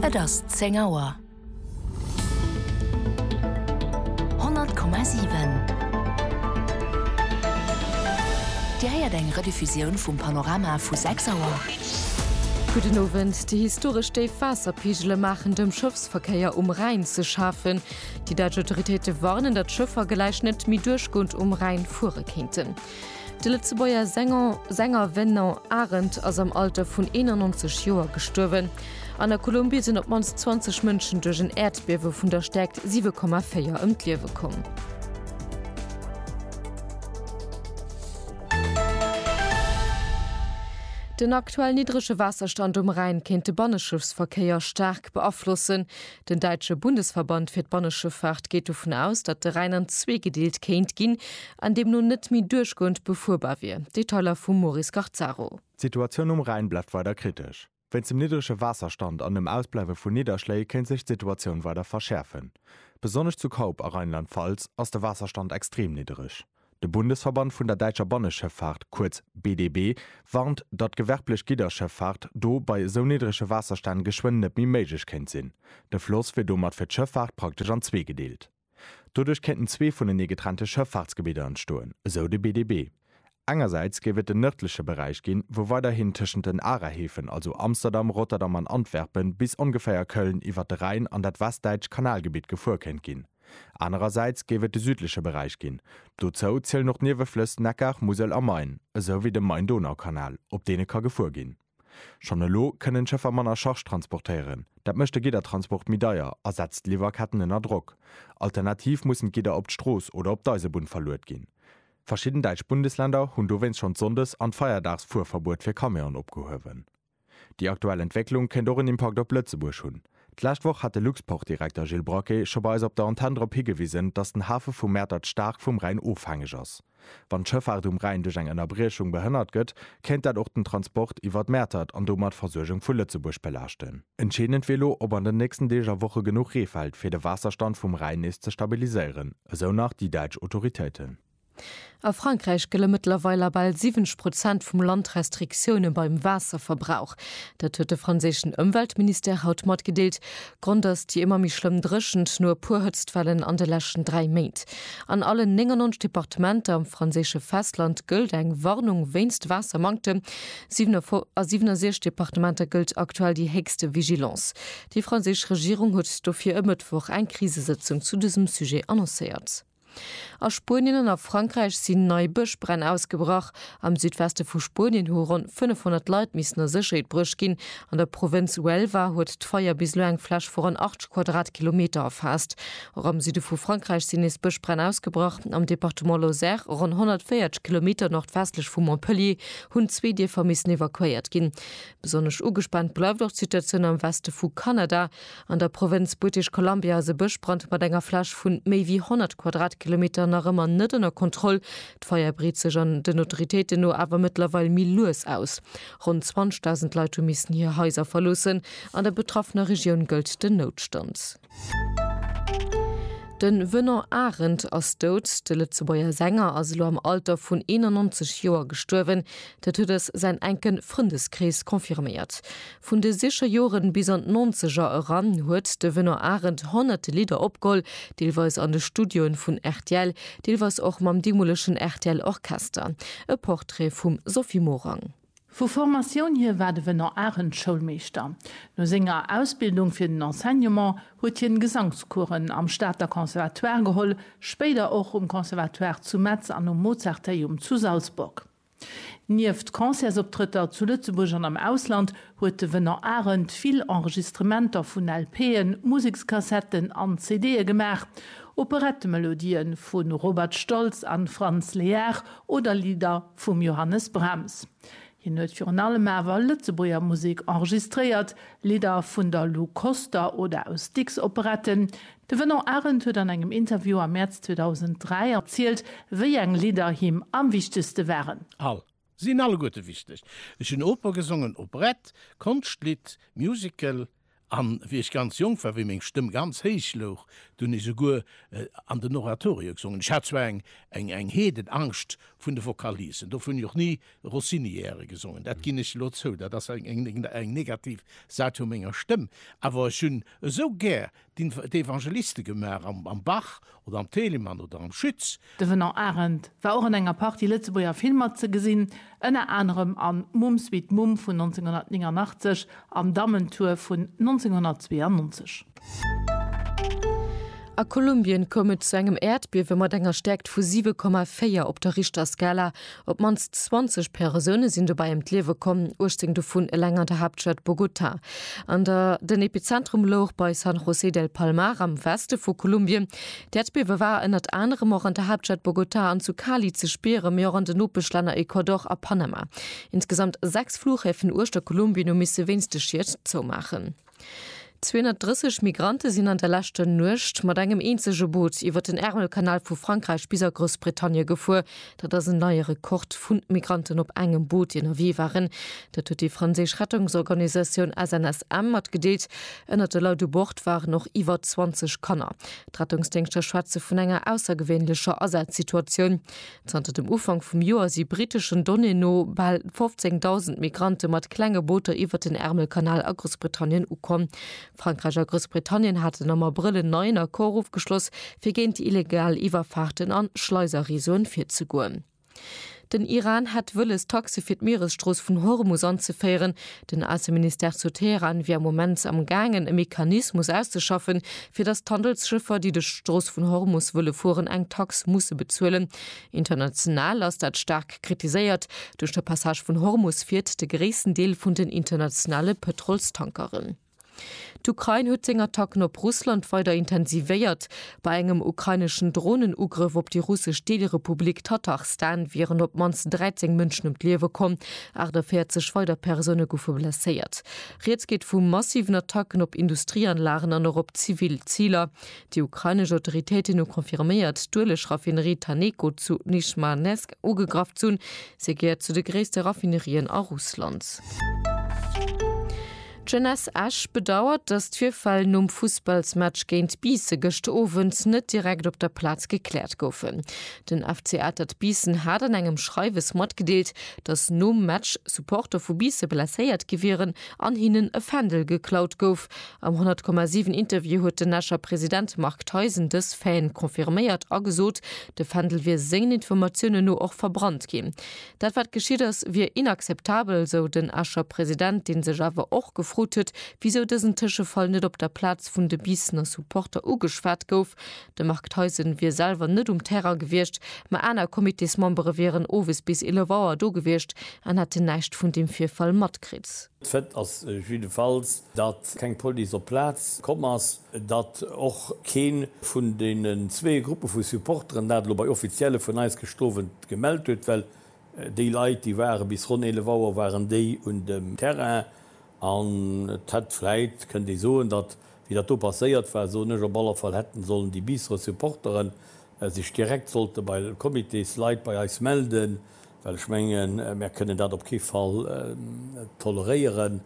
Et ass zéng Auer. 100,7 Dir héiert eng Rediffusioun vum Panorama vu 6 Auer. Gudden Owend, Déi historesch déif Waasserpegele maachen dem Schëffsverkéier um Rhäin ze schafen. Déi däitsch Autoritéite warnen, datt Schëffer gläich net méi duerchgoend um Rhäin fuere kéinten. De Lëtzebuerger Sänger Sänger Venant Arendt ass am Alter vun 91 Joer gestuerwen. An der Kolumbie sinn op d'mannst 20 Mënschen duerch en Äerdbiewe vun der Stäerkt 7,4 ëm d'Liewe komm. Den aktuell niddrege Waasserstand um Rhäin kéint de Banneschëffsverkéier staark beaflossen. Den däitsche Bundesverband fir d'Banneschëffaart geet dovun aus, datt de Rhäin an zwee gedeelt kéint ginn, an deemno net méi duerchgoend befuerbar wier. Detailer vum Maurice Garzaro. D'Situatioun um Rhäin bleift weider kritesch. Wéinst dem niddrege Waasserstand an dem Ausbleiwe vu Nidderschléi kéint sech d'Situatioun weider verschäerfen. Besonnesch zu Kaup a Rheinland-Pfalz ass de Waasserstand extrem niddreg. De Bundesverband vun der däitscher Banneschëffaart, kuerz BDB, warnt, datt gewerblech Gidderschëffaart do bei esou niddrege Waasserstänn geschwënn net méi méiglech kéint sinn. De Floss wier domat fir d'Schëffaart praktesch an zwee gedeelt. Doduerch kéinten zwee vunenee getrennte Schëffaartsgebidder entstoen, esou de BDB. Engersäits géif et den nërdleche Beräich ginn, wou weiderhin tëschent den Arahäfen, also Amsterdam, Rotterdam an Antwerpen, bis ongeféier Köln iwwert de Rhäin an dat westdäitscht Kanalgebitt gefuer kéint ginn. Anerersäits géif et de südleche Beräich ginn. Dozou zielen och d'Nieweflëss Neckar, Musel a Main, esou wéi de Main-Donau-Kanal, op deene ka gefuer ginn. Schonn elo kënnen d'Schëffer manner Charge transportéieren. Dat mécht de Giddertransport méi deier a setzt d'Liwwerketten ënner Drock. Alternativ mussen d'Gidder op d'Strooss oder op d'Eisebunn verluet ginn. Verschidden däitsch Bundesländer hunn dowéinst schonn d'Sonndes an d'Feierdaagsfuerverbuet fir Camion opgehuewen. Déi aktuell Entwécklung kéint och en Impakt op Lëtzebuerg hunn. D'lescht Woch hat de Luxportdirekter Gilles Braquet scho bei eis op der Antenn drop higewisen, datt den Hafe vu Mäertert staark vum Rhäin ofhängeg ass. Wann d'Schëffaart um Rhäin duerch eng Ënnerbriechung behënnert gëtt, kéint dat och den Transport iwwer d'Mäertert an domat d'Versuergung vu Lëtzebuerg belaaschten. Entscheedend wier elo, ob an den nächsten Deeg a Woche genuch Ree fält, fir de Waasserstand vum Rhäin nees ze stabiliséieren, esou nach déi däitsch Autoritéiten. A Frankräich gëlle mëttlerweil a bal 70 Prozent vum Land Restriktioune beim Waasserverbrauch. Dat huet de franséischen Ëmweltministère haut matgedeelt. Grond ass déi ëmmer méi schlëmm Dréchent no e puer Hëtztwellen an de leschten dräi Méint. An allen 99 Departementer am franséische Festland gëllt eng Warnung wéinst Waassermanktem. A 67 Departementer gëllt aktuell déi héchste Vigilance. Déi franséisch Regierung huet dofir e Mëttwoch eng Krisesëtzung zu dësem Sujet annoncéiert. A Spuenien an a Frankräich sinn nei Bëschbränn ausgebrach. Am Südweste vu Spuenien hu ronn 500 Leit missen a Sécherheet bruecht ginn. An der Provënz Huelva huet d'Feier bis elo eng Fläch vu ronn 80 Quadratkilometer erfaasst. Och am Süde vu Frankräich sinn nees Bëschbränn ausgebrach. Am Departement Lozère, ronn 140 Kilometer nordwestlech vu Montpellier, hunn zwee Dierfer missen evakuéiert ginn. Besonnesch ugespaant bleift och d'Situatioun am Weste vu Kanada. An der Provënz British Columbia ass e Bëschbrand mat enger Fläch vu méi wéi 100 Quadratkilometer nach ëmmer net ënner Kontroll. D'Feier breet sech an den Autoritéiten no awer mëttlerweil méi lues aus. Ronn 20.000 Leit hu missen hir Haiser verloossen. An der betraffener Regioun gëllt den Noutstand. Den Venant Arendt ass dout. De Lëtzebuerger Sänger ass elo am Alter vun 91 Joer gestuerwen. Dat huet eis säin enken Frëndeskrees confirméiert. Vun de sicher Joren bis an d'Nonzeger eran huet de Venant Arendt honnerte Lidder opgeholl, deelweis an de Studioen vun rtl, deelweis och mam deemolegen rtl Orchester. E Portrait vum Sophie Morang. Vu Formatioun hir war de Venant Arendt Schoulmeeschter. No senger Ausbildung fir den Enseignement huet hien Gesangscoursen am Stater Conservatoire geholl, spéider och um Conservatoire zu Metz an um Mozarteum zu Salzburg. Nieft Concertsoptrëtter zu Lëtzebuerg an am Ausland huet de Venant Arendt vill Enregistrementer vun LPen, Musekskassetten an CDe gemaach. Operettemelodië vu Robert Stolz a Franz Lehár oder Lidder vum Johannes Brahms. Hien huet virun allem awer Lëtzebuerger Musek enregistréiert, Lidder vun der Lou Koster oder aus Dicks Operetten, De Venant Arendt huet an engem Interview am Mäerz 2003 erzielt, wéi eng Lidder him am wichtegste waren. All. Sinn alleguerte wichteg. Ech hunn Oper gesongen, Operette, Konschtlidd, Musical, an wéi ech ganz jonk war, wéi meng Stëmm ganz héich louch, do hunn ech souguer an den Oratorio gesongen. Ech hat zwar eng eng eng Heedenangscht vun de Vocalisen, dofir hunn ech och ni Rossiniere gesongen, dat ginn ech elo zou, dat ass eng eng eng negativ Säit vu menger Stëmm, awer ech hunn esou gär d'Evangeliste gemaach am Bach oder am Telemann oder am Schütz. De Venant Arendt war och an enger Partie Lëtzebuerger Filmer ze gesinn, ënner anerem an Mumm Sweet Mumm vun 1989 an Dammentour vun 1992. A Kolumbien koum et zu engem Äerdbiewe mat enger Stäerkt vu 7,4 op der Richterskala, Op d'mannst 20 Persoune sinn dobäi ëm d'Liewe komm, 18 dovun eleng an der Haaptstad Bogota. An der Den Epizentrum louch bei San José del Palmar am Weste vu Kolumbien. D'Äerdbiewe war ënnert anerem och an der Haaptstad Bogota an zu Cali ze spieren, mee och an den Nopeschlänner Ecuador a Panama. Insgesamt sechs Flughäfen uechter Kolumbien hu misse wéinst de Schied zoumaachen. 230 Migrante sinn an der leschter Nuecht mat engem eenzege Boot iwwer den Ärmelkanal vu Frankräich bis a Groussbritannie gefuer. Dat ass en neie Rekord vu Migranten op engem Boot, déi ënnerwee waren. Dat huet déi franséisch Rettungsorganisatioun SNSM matgedeelt. Ënnert de Leit u Bord waren och iwwer 20 Kanner. D'Rettungsdéngschter schwätze vun enger aussergewéinlecher Asazsituatioun. Zanter dem Ufank vum Joer si briteschen Donnéeën no bal 15.000 Migrante mat klenge Booter iwwert den Ärmelkanal a Groussbritannien ukomm. Frankräich a Groussbritannien haten am Abrëll en neien Accord ofgeschloss, fir géint illegal Iwwerfaarten an Schleiserreseauen virzegoen. Den Iran hätt wëlles, Taxe fir d'Mieresstrooss vun Hormus anzeféieren, Den Ausseministère zu Teheran wier am Moment am gaangen e Mechanismus auszeschaffen, fir datt d'Handelsschëffer, déi duerch d'Strooss vun Hormus wëlle fueren, eng Tax musse bezuelen. International ass dat staark kritiséiert. Duerch de Passage vun Hormus fiert de gréissten Deel vun den internationale Pëtrolstankeren. D'Ukrain huet seng Attacken op Russland weider intensivéiert. Bei engem ukraineschen Dronenugrëff op déi russesch Deelrepublik Tatarstan wieren op d'mannst 13 Mënschen ëm d'Liewe komm, 48 weider Persoune goufe blesséiert. Rieds geet vu massiven Attacken op Industrieanlagen an och op zivil Ziler. Déi ukrainesch Autoritéiten hu confirméiert, d'Ueleg-Raffinerie Taneko zu Nizhmanesk ugegraff ze hunn. Se gehéiert zu de gréisste Raffinerien a Russland. D'Jeunesse Esch bedauert, datt d'Virfäll nom Fussballsmatch géint Biissen gëscht Owend net direkt op der Plaz gekläert goufen. Den FC Atert Biissen hat an engem Schreiwes matgedeelt, datt nom Match Supporter vu Biisse blesséiert gi wieren an hinnen e Fändel geklaut gouf. Am 100,7 Interview huet den Escher President Marc Theisen dës Faiten confirméiert a gesot, de Fändel wier sengen Informatiounen no och verbrannt ginn. Dat wat geschitt ass, wier inakzeptabel, sou den Escher President, dee sech awer och gefrot huet, wisou dësen Tëschefall net op der Plaz vun de Biissener Supporter ugeschwat gouf. De Marc Theisen wier selwer net um Terrain gewiescht, ma aner Comitésmembere wieren owes bis 11 Auer do gewiescht an hätten näischt vun deem Virfall matkritt. Fait ass jiddefalls, datt keng Police op d'Plaz komm ass, datt och kee vun deenen zwee Gruppe vu Supporteren dat elo bei Offizielle vun eis gëscht Owend gemellt huet, well déi Leit, déi ware bis ronn 11 Auer waren déi un dem Terrain an et hätt vläit, kënnt ee soen, datt, wéi dat do passéiert war, soen ech op alle Fall, hätten sollen déi Biisserer Supporteren sech direkt sollte bei Comitésleit bei eis melden, Well ech mengen, mär kënnen dat op kee Fall toleréieren.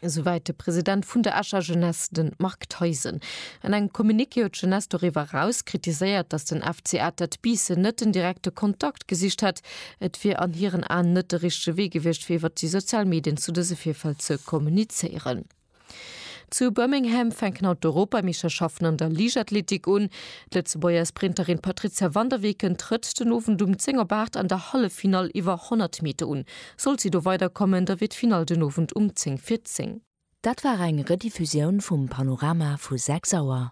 Esouwäit de President vun der Escher Jeunesse, de Marc Theisen. An engem Communiqué huet d'Jeunesse doriwwer eraus kritiséiert, datt den FC Atert Biissen net den direkte Kontakt gesicht hätt. Et wier an hiren Aen net de richtege Wee gewiescht, fir iwwer déi sozial Medien zu dëse Virfäll ze kommunizéieren. Zu Birmingham fänken haut d'Europameeschterschaften an der Liichtathletik un. D'Lëtzebuerger Sprinterin Patrizia van der Weken trëtt den Owend um 10 op 8 an der Halleffinall iwwer 100 Meter un. Sollt si do weider kommen, da wier d'Finall den Owend um 10 fir 10. Dat war eng Rediffusioun vum Panorama vu 6 Auer.